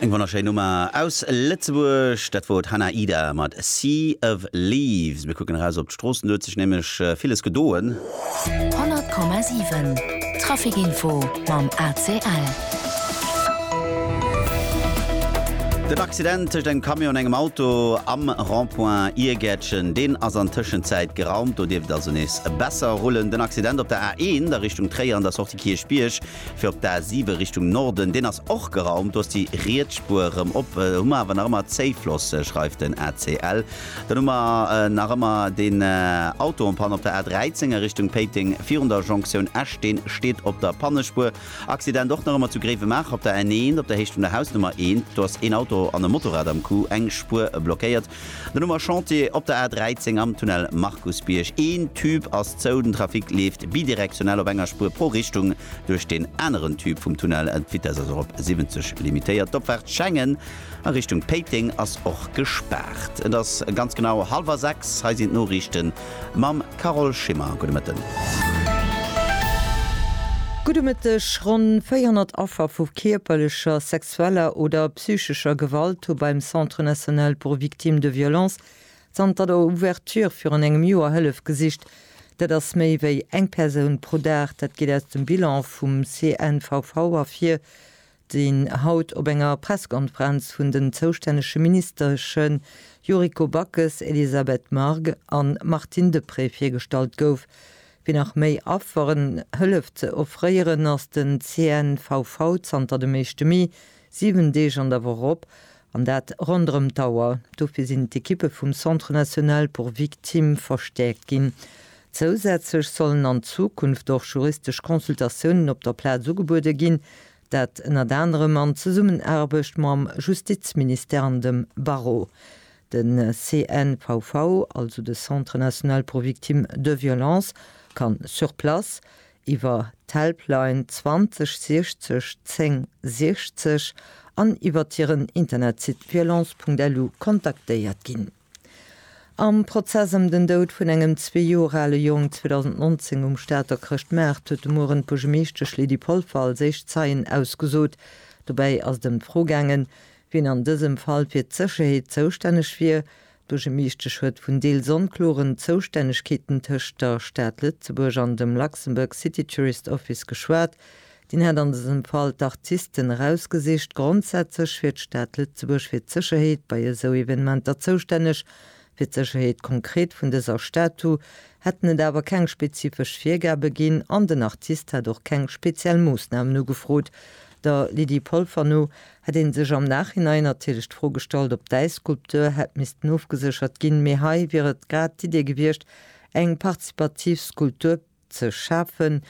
Eng wonnerschéin Nummer aus Lëtzebuerg, dat wor d'Hannah Ida mat Sea of Leaves. Mir kucken eraus op d'Stroossen, do huet sech nämlech villes gedoen. 100,7 Trafic Info mam ACL. Den Accident tëscht engem Camion an engem Auto am Rond-point Iergäertchen, deen ass an Tëschenzäit geraumt. Do dierft et also nees besser rullen. Den Accident op der A1 a Richtung Tréier an der Sortie Kierchbierg, Fir op d'A 7 Richtung Norden, deen ass och geraumt, do ass déi riets Spuer erëm op. Do hu mer awer nach ëmmer Zéifloss, schreift den ACL. Dann hu mer nach ëmmer deen Auto en panne op der A 13 a Richtung Péiteng virun der Jonktioun Esch, deen steet op der Pannespuer. Accident och nach ëmmer zu Gréiwemaacher op der N1 op der Héicht vun der Hausnummer 1, do ass een Auto an e Motorrad am Coup eng Spuer blockéiert. Den Noumer Chantier op der A 13 am Tunnel Markusbierg. Een Tube ass zou, den Trafic leeft bidirektionell op enger Spuer pro Richtung duerch den aneren Tube vum Tunnel. D'Vitess ass och op 70 limitéiert. D'Opfaart Schengen a Richtung Péiteng ass och gespaart. Et ass ganz genau halwer 6, hei sinn d'Noriichte mam Carole Schimmer. Gudde Mëtten. Gudde Mëtteg. Ronn 400 Affer vu kierperlecher, sexueller, sexueller oder psychescher Gewalt hu beim Centre national pour victimes de violences zanter der Ouverture virun engem Joer Hëllef gesicht. Dat ass méi wéi eng Persoun pro Dag. Dat geet aus dem Bilan vum CNVV ervir, deen haut op enger Pressekonferenz vun den zoustännege Ministersche Yuriko Backes, Elisabeth Margue an Martine Deprez virgestallt gouf. Fir nach méi Afferen Hëllef ze offréieren, ass den CNVV zanter dem éischte Mee 7 Deeg an der Woch op, an dat ronderëm d'Auer. Dofir sinn d'Ekippe vum Centre National pour Victimes verstäerkt ginn. Zousätzlech sollen an Zukunft och juristesch Consultatiounen op der Plaz ugebuede ginn, Dat ënnert anerem an Zesummenaarbecht mam Justizministère an dem Barreau. De CNVV, also de Centre national pour victimes de violences, kann sur place, iwwer d'Helpline 20 60 10 60 an iwwert hiren Internetsite violence.lu kontaktéiert ginn. Am Prozess ëm den Doud vun engem zwee Joer ale Jong 2019 um Stater Chrëschtmaart huet de Mueren d'Buergemeeschtesch Lydie Polfer als éischt Zeien ausgesot. Dobäi ass et ëm d'Fro gaangen, wien an dësem Fall fir d'Sécherheet zoustänneg wier. D'Buergemeeschtesch huet vun deels onkloren Zoustännegkeeten tëscht der Stad Lëtzebuerg an dem Luxembourg City Tourist Office geschwat, Deen hätt an dësem Fall d'Artisten erausgesicht. Grondsätzlech wier d'Stad Lëtzebuerg fir d'Sécherheet bei esou Evenementer zoustänneg. Fir d'Sécherheet konkret vun dëser Statue hätten et awer keng spezifesch Virgabe ginn an den Artist hätt och keng speziell Moossnamen ugefrot. Der Lydie Polfer no hätt ee sech am Nachhinein natierlech d'Fro gestallt, ob däi Skulptur hätt missten ofgeséchert ginn, mee hei wier et grad d'Idee gewiescht, eng partizipativ Skulptur, Ze schafen.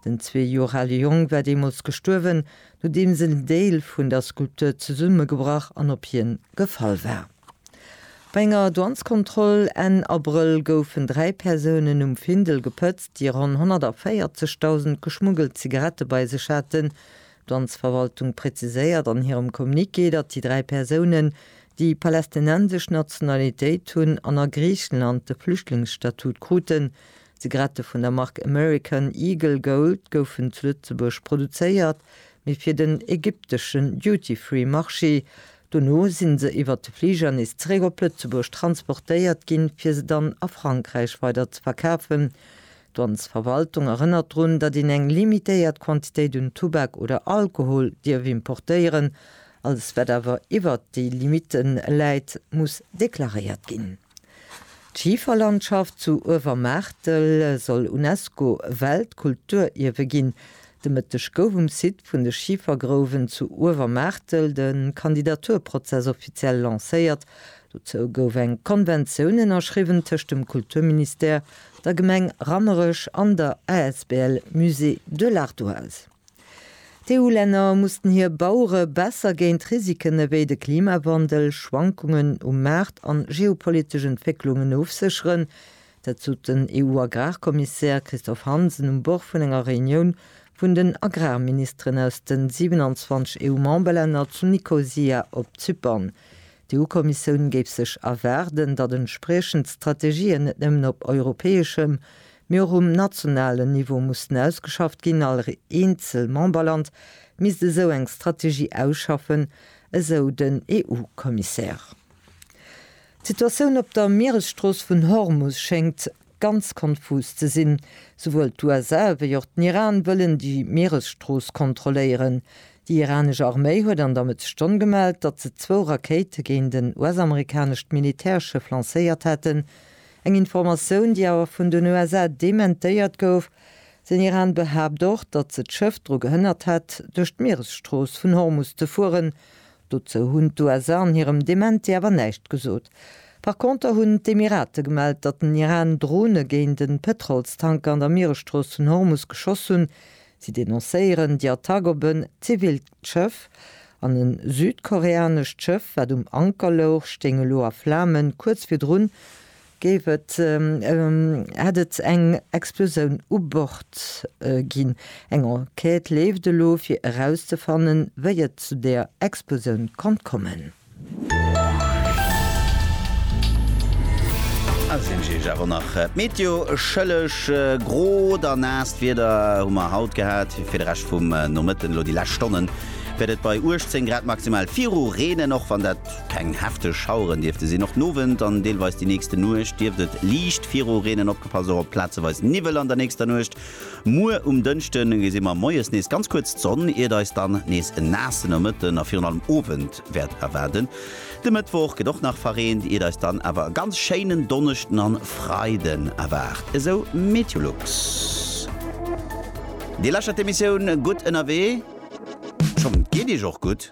Den zwee Joer ale Jong war deemools gestuerwen, nodeems en Deel vun der Skulptur zesummegebrach an op hien gefall war. Bei enger Douanskontroll Enn Abrëll goufen dräi Persounen um Findel gepëtzt, déi ronn 140.000 geschmuggelt Zigarette bei sech haten. D'Douansverwaltung präziséiert an hirem Communiqué, datt déi dräi Persounen déi palästinensesch Nationalitéit hunn an a Griichenland de Flüchtlingsstatut kruten. D'Zigarette vun der Mark American Eagle Gold goufen zu Lëtzebuerg produzéiert, mee fir den ägypteschen Duty-Free-Marché. Dono si se iwwert de Fliger nees zeréck op Lëtzebuerg transportéiert ginn, fir se dann a Frankräich weider ze verkafen. D'Dwanzverwaltung erënnert drun, datt een eng limitéiert Quantitéit un Tubak oder Alkohol dierf importéieren. Alles, wat awer iwwert déi Limitte läit, muss deklaréiert ginn. D'Schiferlandschaft zu Uewermaartel soll UNESCO-Weltkulturierwe ginn. De Mëtteg gouf um Site vun de Schifergrouwen zu Uewermaartel de Kandidaturprozess offiziell lancéiert. Dozou gouf eng Konventioun ënnerschriwwen tëscht dem Kulturministère, der Gemeng Rammerech an der asbl Musée de l'Ardoise. D'EU-Länner mussten hir Bauere besser géint Risiken ewéi de Klimawandel, Schwankungen um Maart an geopolitesch Entwécklungen ofsécheren. Dat sot den EU-Agrarkommissär Christophe Hansen um Bord vun enger Reunioun vun den Agrarministeren aus de 27 EU-Memberlänner zu Nikosia op Zypern. D'EU-Kommissioun géif sech erwaarden, datt entspriechend Strategien net nëmmen op europäeschem, mee och um nationalen Niveau mussten ausgeschafft ginn. All eenzel Memberland misst esou eng Strategie ausschaffen, esou den EU-Kommissär. D'Situatioun op der Mieresstrooss vun Hormus schéngt ganz konfus ze sinn. Souwuel d'USA wéi och den Iran wëllen déi Mieresstrooss kontrolléieren. Déi iranesch Arméi huet an der Mëtt Stonn gemellt, datt se zwou Rakéite géint en US-amerikanescht Militärschëff lancéiert hätten. Eng Informatioun, déi awer vun den USA dementéiert gouf. Den Iran behaapt och, datt se d'Schëff dru gehënnert hätt, duerch d'Mieresstrooss vun Hormus ze fueren, Dozou hunn d'USA an hirem Dementi awer näischt gesot. Par Konter hunn d'Emirate gemellt, datt den Iran Drone géint e Pëtrolstanker an der Mieresstrooss vun Hormus geschoss hunn. Si denoncéieren déi Attack op en zivilt Schëff. An e südkoreanescht Schëff, wat um Anker louch, stéing elo a Flamen. Kuerz virdrun Géif et, hätt et eng Explosioun u Bord ginn. Eng Enquête leeft elo fir erauszefannen, wéi et zu der Explosioun konnt kommen. A sinn ech Iech awer nach d'Meteo schëlleg. Grot a naasst Wieder hu mer haut gehat. Fir de Rescht vum Nomëtten, elo déi lescht Stonnen, wäert et bei 18 Grad maximal viru reenen, och wann dat. Keng hefteg Schaueren dierfte sinn. Och d'Nowend an deelweis déi nächste Nuecht dierft et liicht viru reenen. Opgepasst och op plazeweis Niwwel an der nächster Nuecht. Muer um Dënschde gesi mer moies nees ganz kuerz d'Sonn, iert eis dann nees en naasse Nomëtten a virun allem Owend wäert erwaarden. De Mëttwoch gëtt och nach verreent, iert eis dann awer e ganz schéinen Donneschden an Freiden erwaart, esou Meteolux. Dir lauschtert d'Emissioun Gutt ënnerwee. Schonn, geet Iech och gutt.